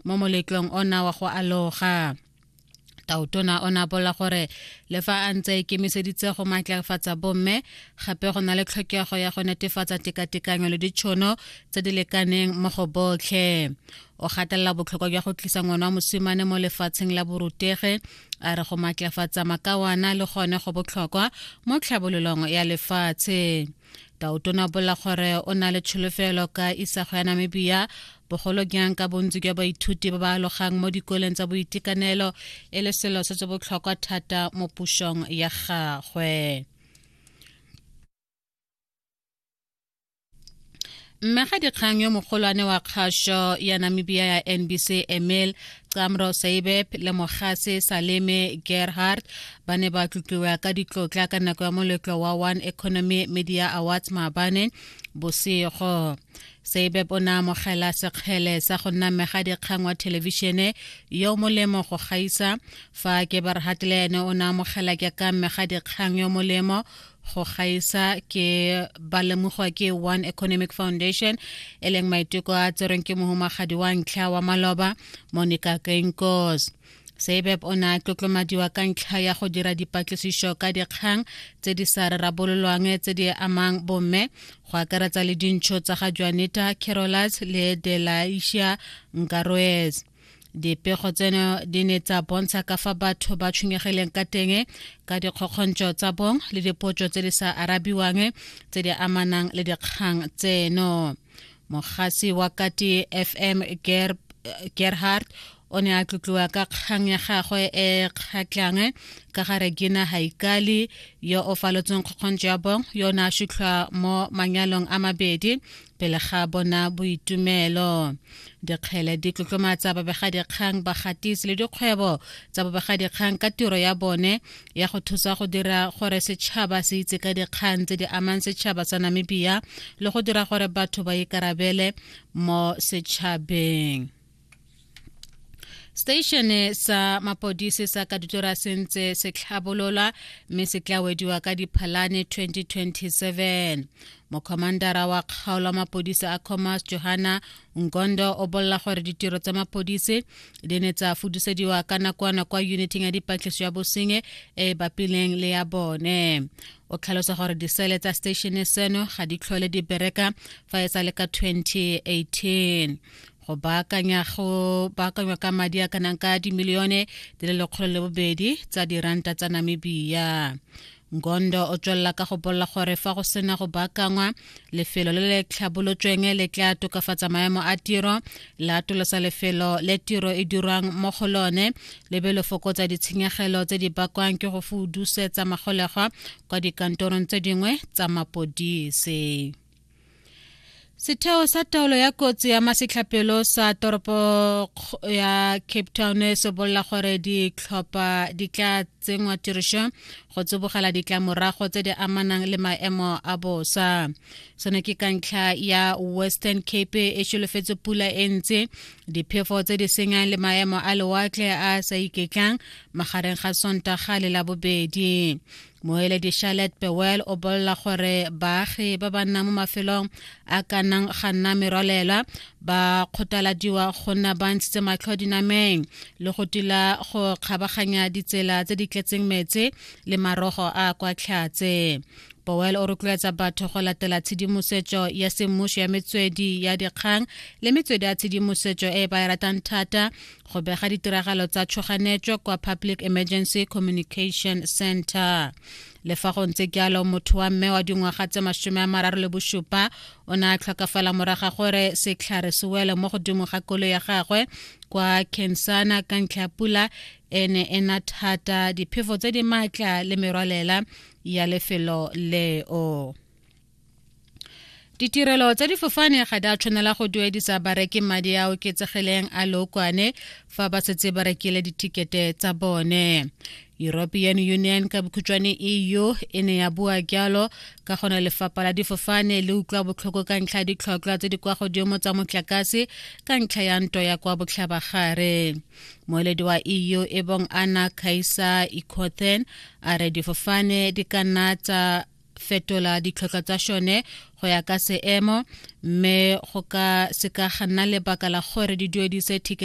mo moletlong ona wa go aloga tautona o ne a bolela gore le fa a ntse a ikemiseditse go maatlafatsa bomme gape go na le tlhokego ya go netefatsa tekatekanyo le ditšhono tse di lekaneng mo go botlhe o gatelela botlhokwa jwa go tlisa ngwana wa mosimane mo lefatsheng la borutege a re go maatlafatsa makawana le gone go botlhokwa mo tlhabololong ya lefatshe tauto na bolela gore o na le tsholofelo ka isago ya namibia bogolo jang ka bontsi jwa baithuti ba ba alogang mo dikoleng tsa boitekanelo e le selo se se botlhokwa thata mo pusong ya gagwe mme ga dikgang yo mogolwane wa kgašo ya namibia ya nbc emil camro saibeb le mogase saleme gerhard ba ne ba tlotliwa ka ditlotla ka nako ya moletlo wa one economy media awards maabane bosego saibeb o ne amogela sekgele sa go nna mmega dikgang wa thelebišene yo molemo go gaisa fa keberhard le ene o ne amogela ke ka mmega dikgang yo molemo go gaisa ke ba lemogwa ke one economic foundation e leng maiteko a tserweng ke mohumagadi wa ntlha wa maloba monica kenkos sebep o ne a tlotlomadiwa ka ntlha ya go dira dipatlisišo ka dikgang tse di sa rarabololwang tse di amang bomme go akaretsa le dintšho tsa ga joanita carolas le delaisia nkaroes Dipego tseno di ne tsa bontsha ka fa batho ba tshwenyegileng ka teng ka dikgokgontšo tsa bong le dipotso tse di sa arabiwang tse di amanang le dikgang tseno mogasi wa kati fm Ger gerhard o ne a tlotliwa ka kgang ya gagwe e kgatlhang ka ga regina haikali yo o falotseng kgokgontšo ya bong yo o ne a šitlhwa mo manyalong a mabedi pele ga bona boitumelo dikgele di tlotlomatsa babegadikgang bagatisi le dikgwebo tsa babegadikgang ka tiro ya bone ya go thusa go dira gore setšhaba se itse ka dikgang tse di amang setšhaba sa namibia le go dira gore batho ba ikarabele mo setšhabeng Seteishene sa mapodisi sa Kaditora se ntse se tlhabolola mme se tla wediwa ka Diphalane 2027. Mokhomandara wa kgaolo ya mapodisi a Comas Johanna Ngondo o bolela gore ditiro tsa mapodisi di ne tsa fudusediwa ka nakwana kwa uniting ya dipatlisiso ya bosenye e e bapileng le ya bone. O tlhalosa gore disele tsa seteishene seno ga di tlhole di bereka fa e sa le ka 2018. go baakanya go baakanywa ka madi a kanang ka dimilione di le lekgolo le bobedi tsa diranta tsa namibia ngondo o tswelela ka go bolela gore fa go sena go baakangwa lefelo le le tlhabolotsweng le tla tokafatsa maemo a tiro la atolosa lefelo le tiro e dirwang mo go lone le be le fokotsa ditshenyegelo tse di bakwang ke go fudusetsa magolegwa kwa dikantorong tse dingwe tsa mapodise Setheo sa taolo ya kotsi ya masetlhapelo sa toropo ya Cape Town se bolela gore ditlhopha di tla tsenngwa tirišo go tsibogela ditlamorago tse di amanang le maemo a bosa seno ke ka ntlha ya western cape e solofetse pula e ntse diphefo tse di senyang le maemo a lewatle a sa iketlang magareng ga sontaga le labobedi moeledi charlotte bewell o bolela gore baagi ba ba nnang mo mafelong a ka nang ga nna merwalela ba kgothaladiwa go nna ba ntshitse matlho dinameng le go tila go kgabaganya ditsela tse di tletseng metse le marogo a kwa tlhatse powell o rotloetsa batho go latela tshedimosetso ya semmuso ya metswedi ya dikgang le metswedi ya tshedimosetso e ba e ratang thata go bega ditiragalo tsa tshoganetso kwa public emergency communication center le fa go ntse jalo motho wa mme wa dingwaga tse masome a mararo le bosupa o ne a tlhokafala moraga gore setlhare se wele mo godimo ga kolo ya gagwe kwa kensana ka ntlha ya pula e ne e na thata diphefo tse di maatla le merwalela ya lefelo leo ditirelo tsa difofane ga di a tshwanela go duedisa bareki madi a oketsegileng a lookwane fa ba setse ba rekile ditikete tsa bone european union ka bokhutšwane eu e ne ya bua jalo ka gone lefapha la difofane le utlwa botlhoko ka ntlha ya ditlhotlhwa tse di kwa godimo tsa motlakase ka ntlha ya nto ya kwa botlhabagare moeledi wa eu e bong ana kaisa ikothen a re difofane di ka nna tsa fetola ditlhotlhwa tsa šone go ya ka seemo mme go ka se ka ga nna lebaka la gore di duedise ticket